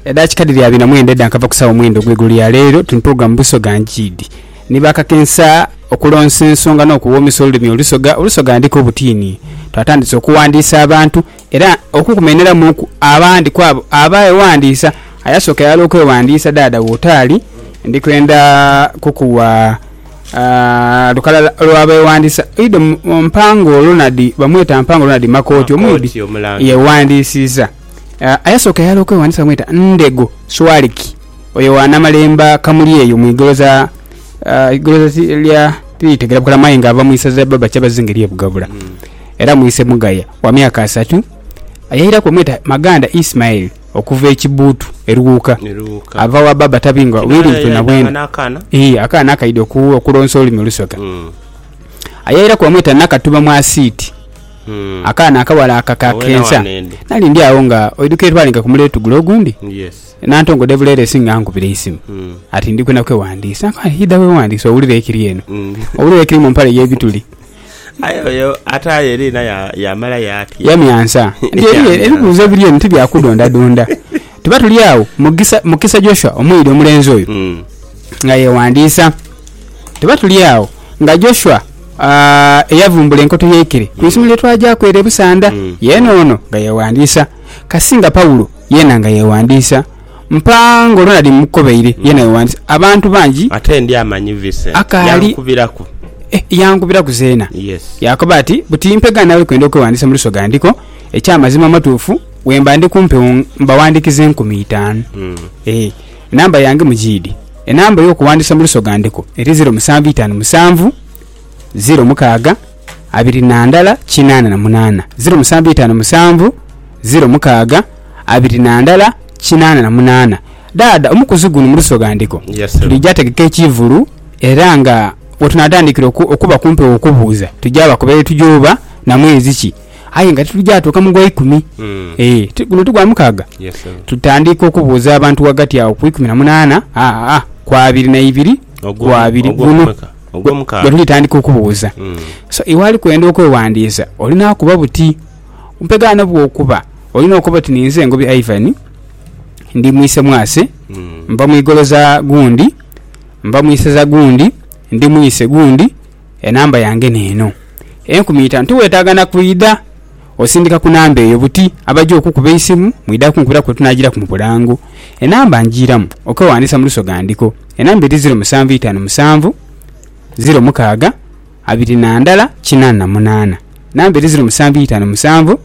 Edakika dhiri abiri na mwenda edha nkava ku sawa mwenda ogw'eigulo ya leero tuni program Busoga Njiidi ni bakakensa okulonsa ensonga n'okuwoomesa olulimi olusoga olusoga ndika obutiini. Twatandise okuwandiisa abantu era okukumeneramuuku abandi kwabo abeewandiisa. Ayasooka yaghala okwewandiisa dhaadha wootaali ndi kwenda kukuwa Lukalala olw'abeewandiisa oidha mu Mpango Ronald, bamweta Mpango Ronald Makooti omwidhi yeewandiisiza. Ayasooka eghala okwewandiisa bamweta Ndhego Swaliki, oyo wa Namalemba Kamuli eyo mu igoloza igoloza lya tiritegera bukalemu aye nga ava mu isaza lya Baba Kyabazinga ery'e Bugabula era mwise Mugaya wa myaka asatu. Yairaku bamweta Maganda Ismail. okuva ekibbuutu eruwuuka. Ava wa baaba tabingwa willi bwena bwena. Ii, akaana akaidhi oku, okulonsa olulimi olusoga. Ayairaku bamweta Nakatuba Mwasiiti. Akaana akawala aka ka kensa. Nali ndi agho nga oidhuka erwalinga ku muleetu gule ogundi, Nantongo Devuleresi nga ankubira eisimu ati ndi kwena kweghandiisa. Nkamukoba nti idha weghandiise owulire ekiri eno. Owulire ekiri mu mpale y'ebituli. Aye oyo ataaye liina yaamala yaatya? Yamyansa nti eriyo ebibuuzo ebiri eno ti bya kudondadonda. Tuba tuli agho, Mugisa, Mukisa Joshua omuyidi omulenzi oyo, nga yeewandiisa. Tuba tuli agho nga Joshua eyavumbula enkoto y'eikere ku isomo lye twagyaku ere e Busanda, yeena ono nga yeewandiisa. Kasinga Paulo yeena nga yeewandiisa. Mpa nga olwo nali mmukobeire ye nayowanisa abantu bangi. Ate Ndyamanyi Vincent akaali. yankubiraku. Eh, yankubiraku zeena. Yes. Yaakoba ati, Buti mpegha naawe kwenda okwewandiisa mu Lusoga ndiko. Eky'amazima amatuufu, bwemba ndi ku mpewo mbawandiikiza enkumi itaanu. Eh, enamba yange mugiidhi. Enamba ey'okuwandiisa mu Lusoga ndiko eri ziro musanvu itaanu musanvu, ziro mukaaga. abiri na ndala kinaana na munaana, ziro musanvu itaanu musanvu, ziro mukaaga abiri na ndala kinaana na munaana. Dhaadha omukuzi guno mu Lusoga Ndigo twidhi tegeka ekiivulu era nga wetunaatandikira okuba ku mpewo okubuuza twidhi bakoba ye tugya oba na mwezi ki aye nga titugya tuuka mu gwaikumi. Ti guno ti gwa mukaaga tutandiika okubuuza abantu ghagati agho ku ikumi na munaana ku abiri na ibiri ku abiri. Guno. Ogw'omukaaga. Bwetulitandika okubuuza, so iwe ali kwenda okwewandiisa olina kuba buti mpegha n'obwokuba olina okoba oti ninze Ngobi Ivan, ndi mwise mwase, nva mu igolo za gundi, nva mu isaza gundi, ndi mwise gundi, enamba yange neeno. Enkumi itaanu. Tiwetaaga na kwidha osindika ku namba eyo buti abagya okukuba eisimu mwidha kunkubiraku bwetunaagiraku mu bulango. Enamba ngiiramu okwewandiisa mu lusoga ndiko. Enamba eri ziro musanvu itanu musanvu ziro mukaaga abiri na ndala kinana munana. Enamba eri ziro musanvu itanu musanvu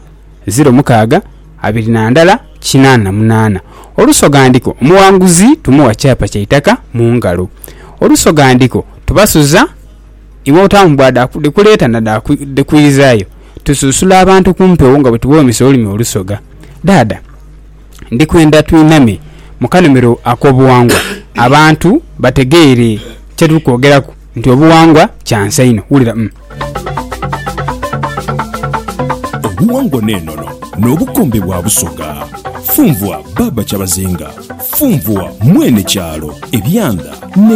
ziro mukaaga abiri na ndala kinana munana. Olusoghandiko Omuwanguzi tumuwa kyapa kya itaka mu ngalo. Olusoghandiko Tubasuza iwe otaamu bwa dha kuleeta na dha kwizayo. Tusuusula abantu ku mpewo nga bwe tughoomesa olulimi olusoga. Dhaadha. ndi kwenda twiname mu kanhumiro ak'obughangwa abantu bategeere kye tuli kwogeraku nti obughangwa kya nsa inho. Wulira umm. Obughangwa n'enono n'obukombe bwa Busoga. Funvua Baaba Kyabazinga. Funvua Mwene Kyalo, Ebyanda ne.